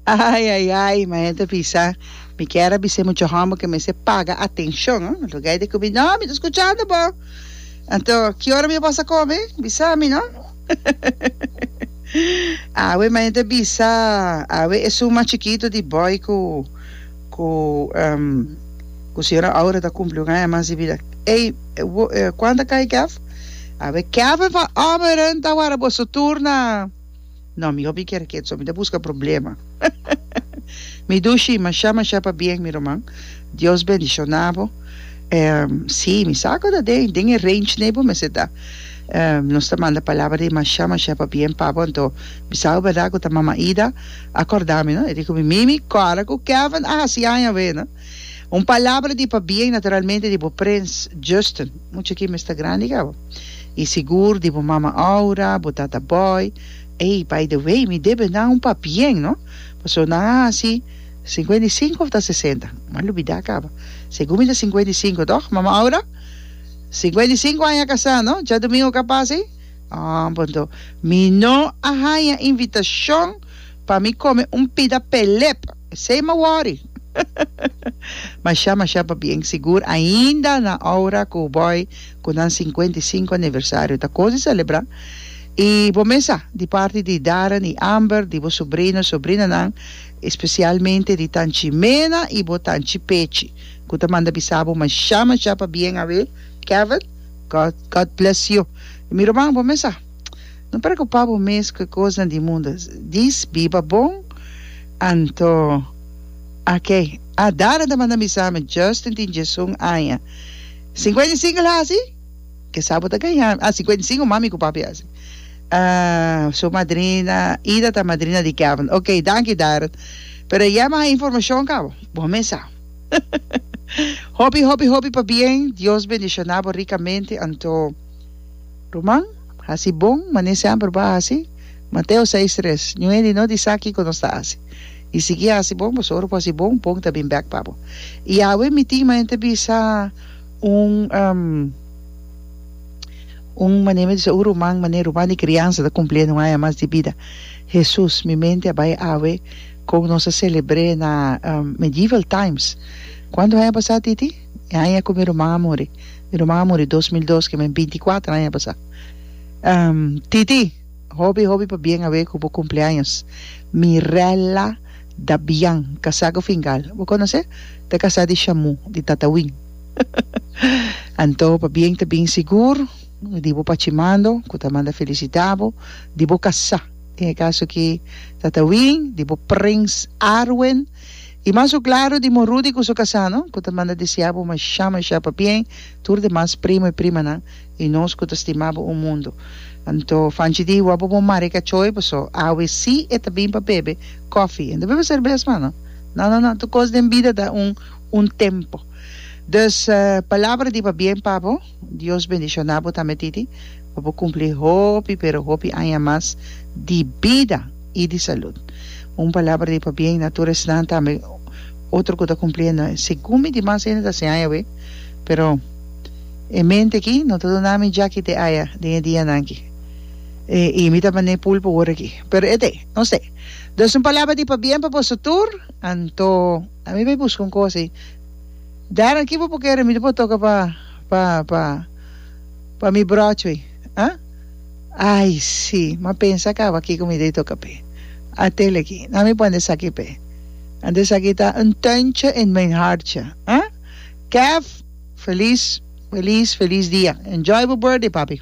Ai ai ai, ma hende bisa, mi kier a bisa e mucha homber ke mester paga atencion, oh. Lo gei de ku mi, no, mi ta scuchando bo. Anto, ki ora mi a bos a come? Bisa mi, no? Awe, ma hende a bisa, awe esun mas chikito di boy ku, ku, um, ku señora Aura ta cumpli un aña mas di bida. Ey, wo, eh, kuanta kai Kev? Awe, Kev, e van ommeren, ta wara boso tur na. No, mi hopi kier kiet so, mi ta buska problema. Mi dushi masha masha pa bien mi ruman, Dios bendiciona bo. Ehm, si, mi sa cu ta den, den e range ne bo mester ta. Ehm, nos ta manda palabra di masha masha pa bien pa bo, anto mi sa cu berdad cu ta Mama Ida a corda mi, no, e di cu mi, Mimi, cora cu Kevin a haci aña awe, no. Un palabra di pabia y naturalmente di bo prins Justin. Mucha aki mester grandi cabo. Y sigur di bo mama Aura, bo tata Boy. Ey, by the way, mi debe nan un papien, no? Paso nan a haci cincuenta y cinco of ta sesenta? M'ha lubida caba. Segun mi ta cincuenta y cinco, toch, mama Aura? Cincuenta y cinco aña casá, no? Djadomingo ca pasa ey? Ah, bon to. Mi no a haya invitacion pa mi come un pida pelep. P'esei m'a wòri. Mashá, mashá pa bien sigur ainda na aura ku bòi ku nan sinkuenta i sinku aniversario ta kos di selebrá. I bo mes sa, di parti di Darren i Amber, di bo subrino, subrinanan, i spesialmente di Tan Chimena i bo Tan Chipechi, ku ta manda bisa bo mashá, mashá pa bien awe, Kevin, God, God bless you. Mi ruman, bo mes sa. No preocupa bo mes cu e cosnan di mundo. Dis, biba bon, anto a ke. A Dana ta manda misamen, Justin tin diesun aña. Cincuenta y cinco el haci? Kesa bo ta gaña. Ah, cincuenta y cinco mami cu papi haci. Ah, su madrina Ida ta madrina di Kevin. Ok, danki Darren. Pero e yema a informacion cabo. Bo mes sa. Hopi, hopi, hopi pa bien. Dios bendiciona bo ricamente, anto. Ruman, hasi bon, manera semper bo a hasi. Mateo seis tres, Ñu hende no disa ki ku nos ta hasi. I sigui hasi bon, pasobra ora ku hasi bon, bon ta bin bèk pa bo. I awe mi tin manera ta bisa un, un manera mi ta bisa un ruman, manera ruman di kriansa ta kumpliendo un aña mas di bida. Hesus, mi mente a bai awe kon nos a selebr'é na Medieval Times. Kuantu aña pasá, Titi? E aña cu mi ruman a muri. Mi ruman a muri dos mil dos, kimen binti kuater aña pasa. TT, hopi hopi pa bien awe cu bo cumpleaños. Mirella Dabian, casá cu Fingal. Bo conoce? Ta casá di Shamu, di Tatawin. Anto pa bien ta bin sigur di bo pachimando cu ta manda felicita bo, di bo casá. Den e caso aki, Tatawin, di bo prins Arwen. I mas su klaru di mo Rudy ku su kasano, ku ta manda deseá bo mashá mashá pa bien, tur demas primo i primanan, i nos ku ta stimá bo un mundu. Anto Fanchi di wou pa bo mari kachoi, pasó awe sí e ta bin pa bebe kòfi, e no ta bebe serbes mas no. No no no, tur kos den bida ta un un tempo. Dus, palabra di pa bien pa bo. Dios bendiciona bo tambe Titi pa bo cumpli hopi pero hopi aña mas di bida y di salud. Un palabra di pabien na tur esnan tambe otro cu ta cumpliendo aña. Segun mi di mas hende ta hasi aña awe pero e mente aki no ta duna mi jaki te aña den e dianan aki y mi ta bane pul pa wor aki pero e te no se. Dus un palabra di pabien pa boso tur anto ami bay busca un cosa y. Darren ki bo por kere mi ta por toka pa pa pa pa mi brochway ah ay si ma pensa kaba kiko mi dei toka p'e a tele aki nan mi pone esaki p'e and esaki ta un tuintje in mijn hartje ah Kev feliz feliz feliz dia enjoy bo birthday papi.